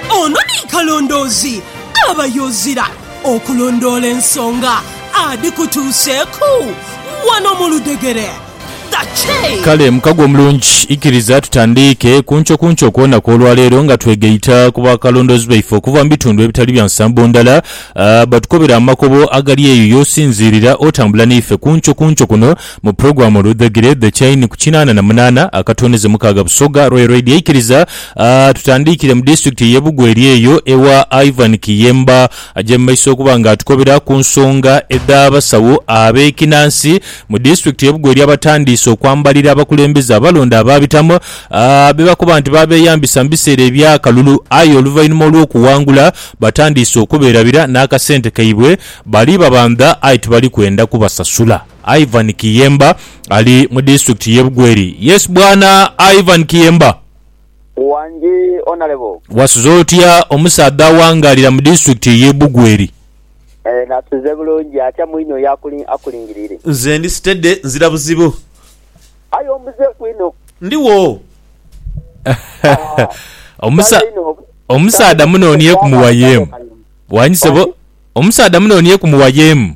Ono ni kalondoozi aba yozira okulondoola ensonga adhikutuuseeku wano mu ludhegere. The Che. Kale mukago omulungi, ikiriza tutandiike kunkyo kunkyo kwona kw'olwaleero nga twegaita ku bakalondoozi baife okuva mu bitundu ebitali bya nsambo ndala batukobere amakubo agali eyo y'osinziirira otambula naife kunkyo kunkyo kuno Mu pulogulaamu oludhagire The Chain ku kinaana na munaana akatondeze mukaaga Busoga Royal Raid yaikiriza tutandiikire mu disitulikiti ey'e Bugweri eyo ewa Ivan Kiyemba aje mu maiso okuba nga atukobera ku nsonga edh'abasawo ab'ekinansi mu disitulikiti y'e Bugweri abatandiise okwambalira abakulembeze abalonde abaabitamu be bakoba nti baabeeyambisa mu biseera eby'akalulu aye oluvainhuma olw'okuwangula batandiise okuberabira n'akasente kaibwe bali babandha aye tibali kwenda kubasasula. Ivan Kiyemba ali mu disitulikiti y'e Bugweri. Yes Bwana Ivan Kiyemba. Wangi Honourable. Wasuze otya omusaadha awangaalira mu disitulikiti y'e Bugweri? Eeh nasuze bulungi atya mwine oyo akulingiriire? Nze ndi sitede nzira buzibu. Aye ombuzeeku inho. Ndiwo. Omusaadha munonieku muwayeemu. Wangi sebo. Omusaadha munonieku muwayeemu.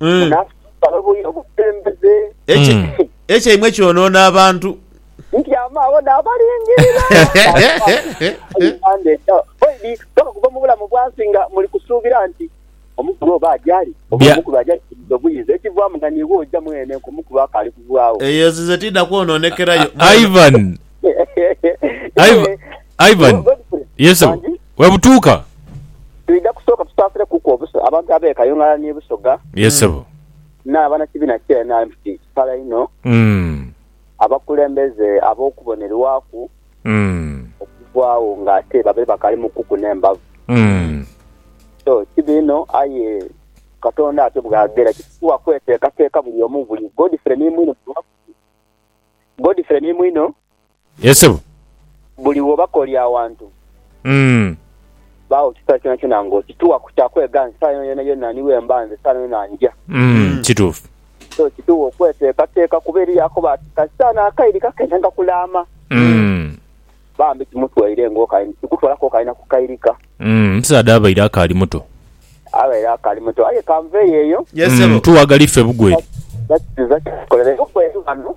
Eh, munasaba obuya obukulembeze ekye- Mm. ekyaimwe kyonoona abantu nti amaabo nabalingirira Uganda eja oidi paka kuva mu bulamu bwansi nga muli kusuubira nti omukulu oba ajali oba Bya- omukulu ajali kubuza obuyinza ekivaamu nga niiwe oja mwene nka omukulu akaali kuvaawo eyo ezize tiida kwonoonekerayo Ivan, Ivan, Ivan. Yes, sebo. Wangi? Bwebutuuka. Twidha kusooka tusaasire kuku obusa abantu abeeka Yungala ni Busoga. Ye sebo. N'abana kibiina kya nrm kiti kipala inho. Umm. Abakulembeze ab'okubonerwaku. Umm. Okuvaawo nga ate babaire bakaali mu kuku n'embavu. Umm. So kibi inho aye Katonda atyo bw'agera. Kitugha kweteekateeka buli omu buli. Godfrey ni mwine. Godfrey ni mwine. Yee sebo. Buli w'obakolya awantu, baagho kisera kyonakyona nga okituwa ku kya kwega nti saala yonayona ni bwe mba nze, saala yonayona nja. Kituufu. So kituwa okweteekateeka kuba eriyo akoba ati, Kasita n'akaire kake ntandiika kulaama. Bambi kimutwaire ng'okaire nti kikutwala k'okaire na ku kairika. Omusaadha abaire akaali muto. Abaire akaali muto. Aye kanveeyo eyo. Tuwagala ife bugweri. That is it. Tukolereireku eri ghano.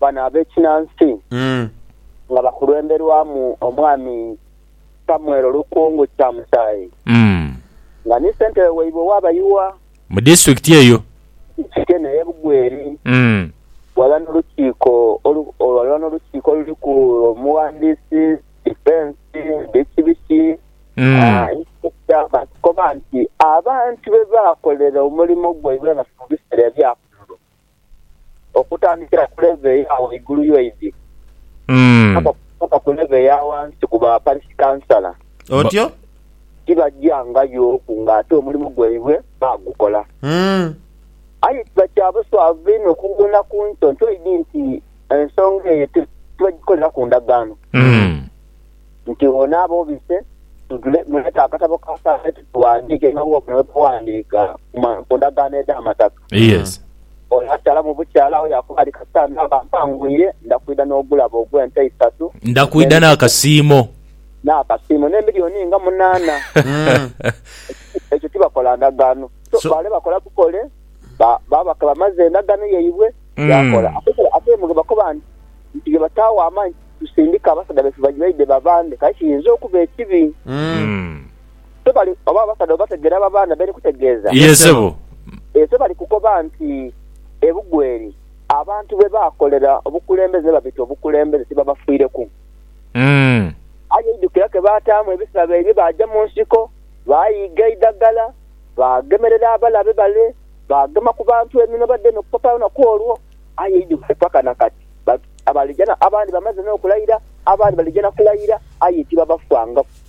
bano ab'ekinansi nga bakulwemberwamu omwami Samuel Lukungu Kyamusayi nga ni sentebe waibwe ow'abayiwa mu disitulikiti eyo eno eye Bugweri ghalala n'olukiiko ghalala n'olukiiko oluliku omughandiisi, difensi, biki biki bakoba nti abantu bebaakolera omulimo gwaibwe nga tibabisera ebyakulu. Okutandikira ku levo eya ghaigulu yo idi Mm. paka ku levo eya ghansi ku ba parishi kansala, Otyo? tibagyangayoku ng'ate omulimu gwaibwe bagukola. Mm. Aye kiba kya buswavu inho okughuuna ku nto nto idi nti ensonga eyo ti- tibagikoleraku ndagaano. Mm. Nti ono aba obise, tule- muleete akatabo ka saala eyo tughandiike nga bwobona bwe baghandiika ku ma- ku ndagaano edh'amataka. Yes. Ono akyala mu bukyala awo yaakuba ali kasita naaba mpangwire, nda kwidha n'ogulabo ogw'ente isatu, Nda kwidha n'akasiimo. n'akasiimo, n'emilioni nga munaana. Ekyo tibakola ndagaano. So, So- baale bakola bukole, ba- baaba ke bamaze endagaano yaibwe, Mm. yaakola. Ate ke- Ate mu ge bakoba nti, nti ge bataagho amaani, tusindike abasaadha baife baidhe babande, kale kiyinza okuba ekibi. Mm. Se bali oba abasaadha obategeera aba baana be ndikutegeeza? Ye sebo. Ee, se bali kukoba nti, Ebugweri abantu bye baakolera obukulembeze ne babita obukulembeze tibabafiireku. Aye eidhukira ke baataamu ebisabo ebyo, baaja mu nsiko, baaghiiga eidhagala, baagemerera abalabe bale, baagema ku bantu eminwe bademe okufa pa lunaku olwo. Aye eidhukire paka na kati, abandi bamaze n'okulaira, abandi balija na kulaira, aye tibabafangaku.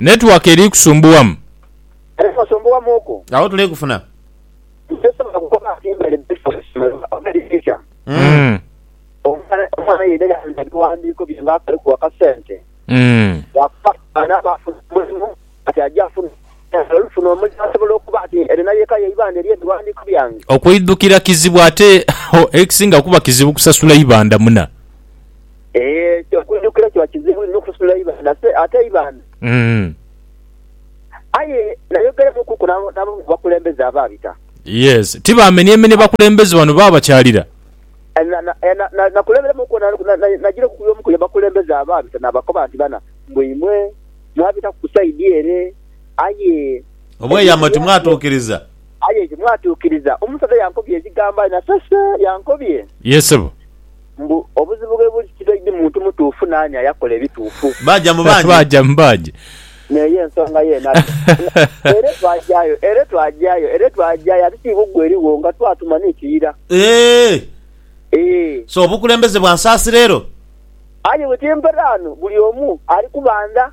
Network eri kusumbuwamu. Agho tuli kufuna. Okwidhukira kizibu ate ekisinga kuba kizibu kusasula ibandha muna. Ekyo okujukira kiba kizibu inho okusitula eibanhase ate eibaana. Aye nayogeramukuku n'abamu ku bakulembeze abaabita. Yes. Ti baamenyemenie bakulembeze bano baba bakyalira? Nakulemberamuku najireku ku y'omu ku bakulembeze abaabita naabakoba nti, Bana, mbu imwe mwabitaku ku saidi ere, aye. Obweyamo timwatuukiriza. Aye timwatuukiriza. Omusaadha yankobya ebigambo aye nasese. Yankobye. Yee, ssebo. Mbu obuzibu bwe buli tibaidhi muntu mutuufu naani ayakola ebituufu. Baaja mu baagi. Baaja mu baagi. N'eyo ensonga yeene ati, Ere twagyayo, ere twagyayo, ere twagyayo ati ti bugwe erigho nga twatuma ni kiira. Eeh! Eeh! So obukulembeze bwa nsaasira ero? Aye bwe timperaano buli omu ali kubandha.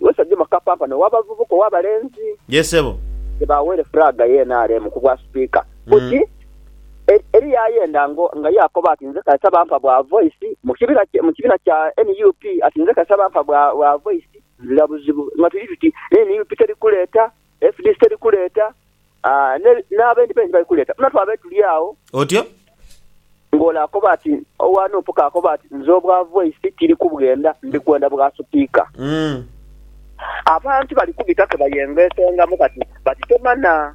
Lwesa Juma Kapampana ow'abavubuka ow'abalenzi. Yee sebo. Ye baaweere flag ye nrm ku bwa Sipiika. Buti eri yaayenda ngo nga yaakoba ati nze kasita bampa bwa voice mu kibina kye mu kibiina kya nup ati nze kasita bampa bwa bwa voice nzira buzibu nga tuli tuti ne nup teri kuleeta FDC teri kuleeta, n'abendi bendi bali kuleeta. Buna twabaire tuli agho. Otyo? Ng'ole akoba ati, Owa Nup k'akoba ati, Nze obwa Voice tiri kubwenda, ndi kwenda bwa Sipiika. Abantu bali kubita ke bayengesengamu kati bati tomanha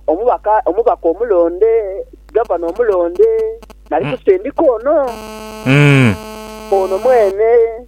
omubaka omubaka omulonde, Gavana omulonde nali kusindika ono, ono mwene.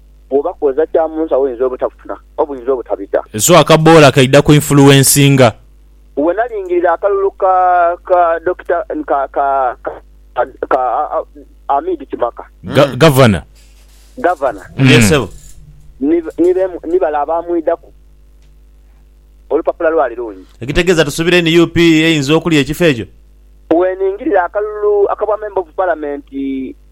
Bwoba kwoza kya mu nsi awoinza obutafuna obwinza obutabita. So akaboola kaidha ku influencinga. Bwe nalingirira akalulu ka ka Dokita ka ka ka Amid Kimaka. Gavana. Gavana. Yee sebo. Ni ni ni bale abaamwidhaku. Olupapula lwali lungi. Ekitegeeza tusubire nup eyinza okulya ekifo ekyo? Bwe ningirira akalulu aka bwa Member of Parliament.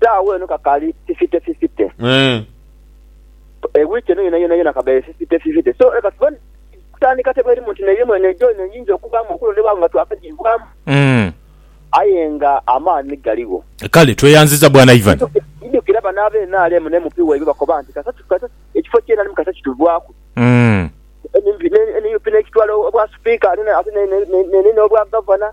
Saagho eno kakali fifite fifite. E wiiki eno yonayona yona kaghaire fifite fifite. So leka tube kutandika tebwe erimu nti neirimu eno ejo eno eyinza okubaamu okuno ni baawo nga twakagiibwamu. Aye nga amaani galigho. Kale tweyanziza Bwana Ivan. Idhukira bano aba nrm ne MP waibwe bakoba nti kasita ekifo kyenalimu kasita kituvaaku, nup n'ekitwala obwa sipiika ate n'enina obwa gavana.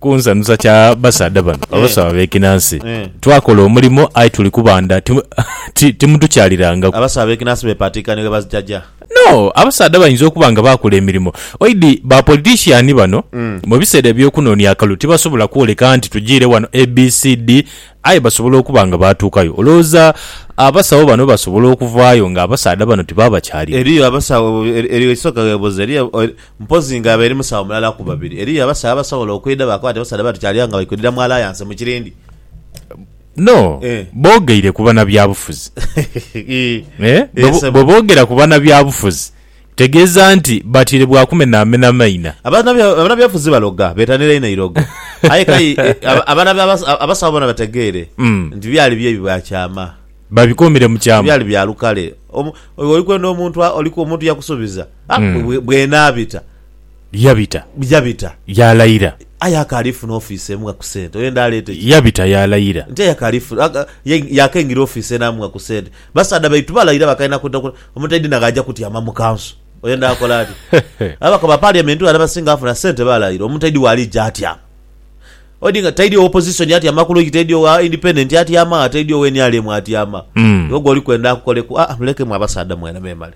Ku nsanhusa kya basaadha bano abasawo abekinansi, twakola omulimo aye tuli kubandha timutukyalirangaku. Abasawo abekinansi bepaatiika ni bwebazijaja? No, abasaadha bainza okuba nga baakola emirimo. Oidhi ba politician bano mu biseera eby'okunoonia akalulu tibasobola kwoleka nti tujiire wano ABCD aye basobola okuba nga baatuukayo. Olowooza abasawo bano basobola okuvaayo ng'abasaadha bano tibaabakyalira? Eriyo abasawo, eriyo eisoka webuuza, eriyo. Mpozi nga aba eri musawo mulala ku babiri. Eriyo abasawo abasobola okwidha baakoba nti abasaadha bati kyali agho nga bali kwidhira mu alliance mu kirindi. No, Eh. boogeire ku banabyabufuzi. Ii. Eh, Eh, bwe- sebo. bwe boogera ku banabyabufuzi tegeeza nti batire bwa kumenaamena maina. Abanabya- Abanabyabufuzi baloga, betanira inho eirogo. Aye kai eh, aba- abana by'abas- abasawo bona bategeere Mm. nti byali bye bya kyama. Babikomire mu kyama. Byali bya lukale. Omu- Oli kwenda omuntu a- oli ku- omuntu yakusubiza. Aye bw'enaabita. Yabita. Yabita. Yaalayira. Aye akaali funa ofiisi emu nga ku sente. Oyenda aleete ki? Yabita. Yaalayira. Nti aye akaali funa. Yaakengira ofiisi enaamu nga ku sente. Basaadha baitu balayira bakaina kwidha ku. Omuntu aidhi na gh'aja kutyama mu kanso. Oyenda akole atya? Ababaka ba Parliament wano abasinga bafuna sente balayira. Omuntu aidhi w'aliija atyama. Odinga taidhi owa opozisoni atyama ku logi, taidhi owa independent atyama gha, taidhi owa nrm atyama. Iwe gwoli kwenda akukoleku? Aa mulekemu abasaadha mwena memale.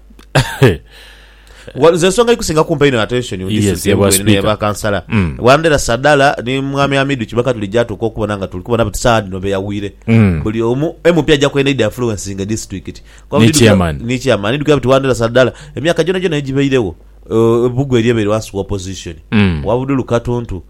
Nze ensonga eikusinga kumpa einho attention mu district emu bweri neya ba kansala. Wandera Sadala ni Mwami Hamidu Kibaka tulija tuuka okubona nga tuli kubona buti saagha dhino beyawire. Buli omu MP aja kwenda eidha influencinga district. Ni chairman. Ni chairman. Ndidhukira buti Wandera Sadala emyaka gyonagyona egibairegho, ebugu elyo ebaire ghansi wa opozisoni. Owa Budulu Katuntu.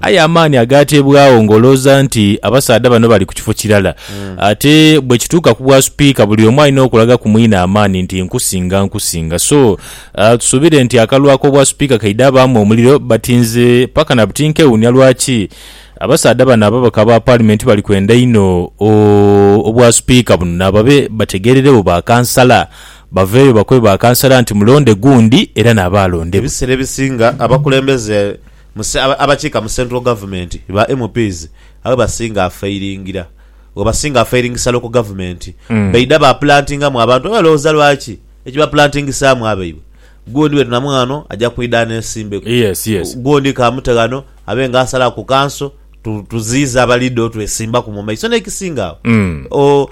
Aye amaani agaateebwagho ng'olowooza nti abasaadha bano bali ku kifo kirala. Ate bwe kituuka ku bwasupiika buli omu alina okulaga ku mwine amaani nti nkusinga, nkusinga. So, tusuubire nti akalulu ak'obwasupiika kaidha baamu omuliro but nze paka na buti nkewuunia lwaki abasaadha bano ababaka ba Paalimenti bali kwenda inho obwasupiika buno nababe bategeereregho ba kansala baveeyo bakobe ba kansala nti mulonde gundi era naaba alondebwa. Ebiseera ebisinga abakulembeze Muse abakiika mu central government ba MPs abe basinga afailingira webasinga afairingisa local government baidha ba plantinga mu abantu abe lowooza lwaki ekibaplantingisaamu abaibwe gundi bwetunamu ghano aja kwidha anesimbeku gundi kamute ghano abe nga asalaku ku kanso tuziize abaliida otwesimbaku mu maiso nekisinga agho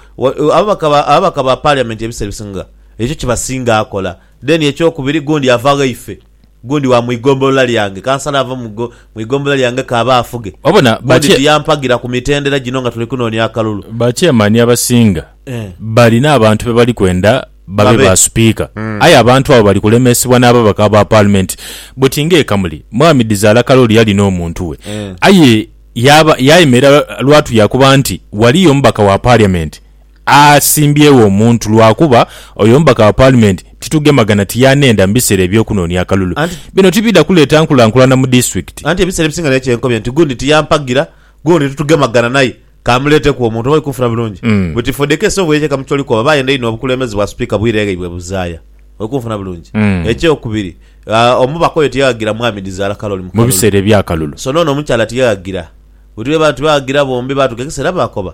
ababaka ba parliament ebiseera ebisinga ekyo kibasinga akola then ekyokubiri gundi ava ghaife. Gundi wa mu igombolola lyange, kansala ava mu igombolola lyange k'abe afuge. Obona, Gundi bakye, tiyampagira ku mitendera gino nga tuli kunoonia akalulu. bakyemani abasinga Eh. balina abantu be bali kwenda babe Babe. ba Supiika. Aye abantu abo bali kulemesebwa n'ababaka ba Paalimenti. Buti ng'e Kamuli, Mwami Dhizaala Kalooli yalina omuntu we. Eh. Aye yaaba, yaayemerera lwatu yaakoba nti, Waliyo omubaka wa Paliamenti Aasimbyewo omuntu lwakuba oyo omubaka wa Paalimenti titugemagana ti y'anenda mu biseera eby'okunoonia akalulu. Anti. Bino tibidha kuleeta nkulankulana mu disitulikiti. Anti ebiseera ebisinga naye kye nkobye nti gundi tiyampagira, gundi titugemagana naye kamuleeteku omuntu oba oikunfuna bulungi. But if for the case of Weyeche Kamucholi Kooba baayenda inho obukulembeze bwa Sipiika bwire ghaibwe buzaaya. Oikunfuna bulungi? Ekyokubiri, omubaka oyo tiyaghagira Mwami Dizaala Kaloli mu Mu kalulu. biseera eby'akalulu. So n'ono omukyala tiyaghagira. Bwetughe baatughagira bombi baatugekeseera baakoba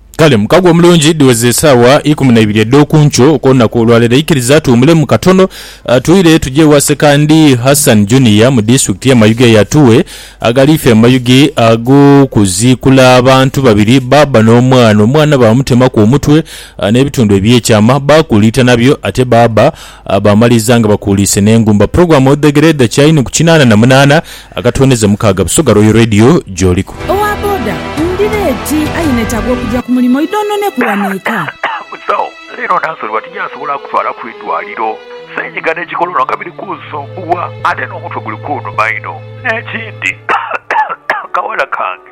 Kale mukago omulungi, dhiweze esaawa ikumi na ibiri edh'oku nkyo okw'olunaku olwa leero. Ikiriza tuwumulemu katono, twire tuje ewa Sekandi Hassan Junior mu disitulikiti y'e Mayuge eyo atuwe agaliife mu mayuge ag'okuziikula abantu babiri, bbaabba n'omwana. Omwana baamutemaku omutwe n'ebitundu eby'ekyama, baakuuliita nabyo ate bbaabba Baamaliza nga bakuuliise n'engumba pulogulaamu Odhegere edha Kyaini ku kinaana na munaana akatooneza mukaaga Busoga Royal Radio gy'oliku. Owa boda ndhira eti aye netaaga okugya ku mulimo idhoononeku wano eka. Musawo, leero Nansoliwa tinyasobola kutwala ku idwaliro. Senyiga ne kikolono nga biri kunsumbuwa ate n'omutwe guli kunuma inho. N'ekindi, kawala kange